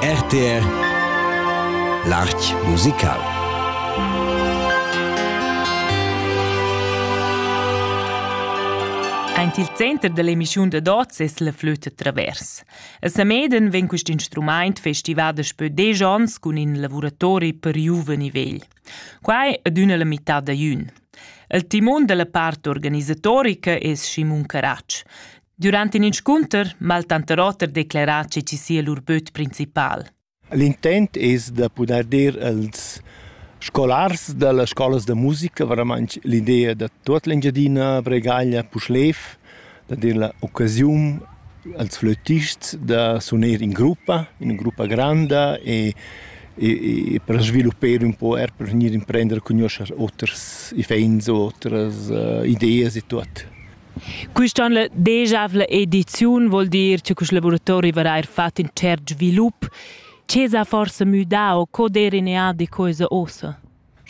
RTR L'Arch musical Aint il center dell'emissiun da dots es la flüta travers. A Sameden vegn quist instrumaint festivà daspö desch ons cun in lavuratori per giuven e vegl. Quai adüna la mità da jün. Il timon della part organisatorica es Simon Caratsch. Durant in inscunter m'ha il tanter oter declerà che ci sia lur böt principal. L'intent es da pudair dir als scolars da las scolas da musica, veramente l'idea da tut l'Engiadina, Bregaglia, Puschlev, da dir l'occasione als flötists da suner in gruppa, in gruppa grande e e, e per sviluppare un po' er per venire a prendere cognoscere oters ifens, otras uh, idee e tutto. Quista on la degiavla ediziun vuol dir che quist laboratori varà eir fat in tschert svilup. Che s'ha forsa müdà o co d'eira in eadi quoisa uossa?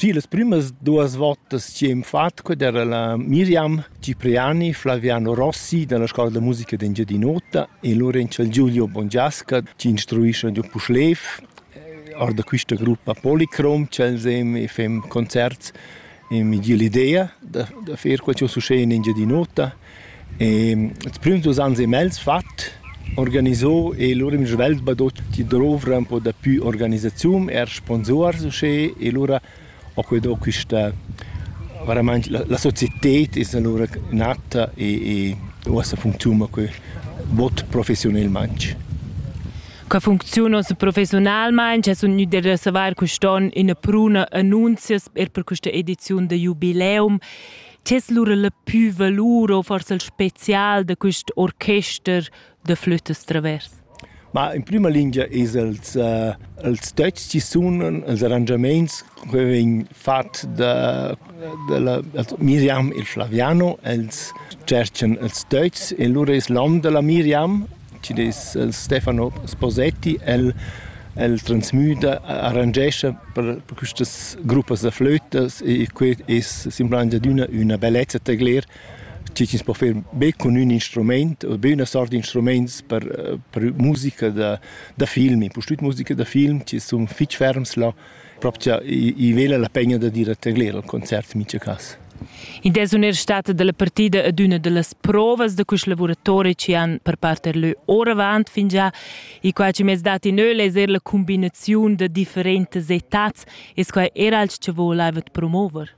Sì, las prümas duas votas chi hem fat quai era la Miriam Cipriani, Flaviano Rossi dalla Scola da musica d'Engiadin'Ota e Lorenzo Giulio Bongiasca chi instruischan giò Puschlev, or da quista gruppa Policrom ch'els hem e fem concerts e mi gie l'idea da, da fer quel ch'jeu succed in Engiadin'Ota. E ils prüms dus ans e mez fat, organiso e lura in svelt badotti d'ovra un po dapü organisaziun, eir sponsuors uschè e lura ho que do quista veramaing la, la societed es alura natta e, e uossa funcziuna que bod professiunelmaing. Qua funcziuna professionalmain, che sun gnü da savair quist'on ina pruna annunzias er per questa ediziun da Jubileum. Che es lura la pü valur o forse il spezial da quist orchester da flütas travers? Ma in prima lingia es els, uh, els töchs chi sunan, els arrangiamaints che vegn fat da, da la, Miriam e Flaviano, els tscherchan els töchs e lura es l'hom da la Miriam Chi dess el Stefano Sposetti, el el transmüda, arrangescha per per quistas gruppas da flötas e que es simplamaing adüna üna bellezza tegler chi chi's po fer be cun ün instrumaint o be üna sort d'instrumaints per per musica da da film, impustüt musica da film chi sun fich ferms là propcha i vela la pegna da dir a tegler al concert micha cas. In des un er stata dalla partida ad una dallas provas da quest lavoratori che han per parte lö ora avant fin già i qua ci mes dati neu leser la combinazione da differentes etats es qua era als che volevot promover.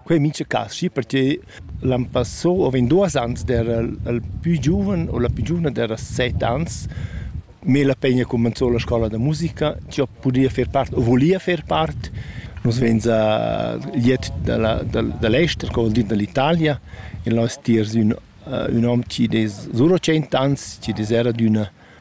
Quei mintga carschi pertgei l'an passau havein duas ans d'era il pü giuven u la pü giuvna d'era set ans me la pegna cumenzou la scola da musica, che ho pudia fer part o volia fer part. Nus vein za liet dalla, dal, dall'ester, co vuol dir dall'Italia, e là es tiers ün, ün hom chi'd es sur tschient ans, chi'd es era d'üna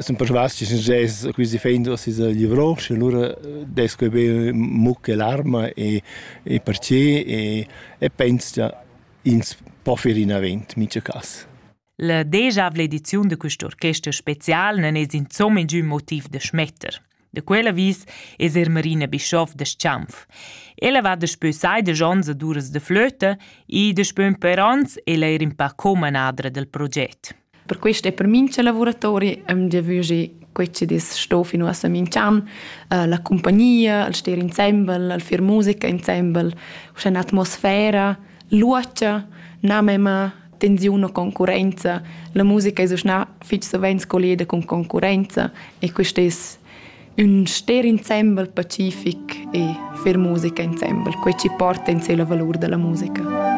Sun persvas chi sün quist defend uoss es livrò, sche lura dess que be muc e larma e e perche e e pens cha ins po fer inavant mincha cas. La degiavla ediziun da quist orchester special nun es insomma ingün motiv da schmetter. Da quel avis es er Marina Bischoff da Schanf. Ella va daspö sai desch ons ad uras da flöta e daspö ün per ans ella er in pa co-manadra del proget. Per questo è per mincha lavoratori am giavügi quei che dis sto fino a Samincan, uh, la compagnia, il stare insieme, il far musica insieme, uschè atmosfera, luocha, na mema tensiun o concurrenza. La musica es uschna fich savens colleda cun concurrenza e quist es ün ster insembel pacific e fer musica insembel, quai chi porta in se la valur da la musica.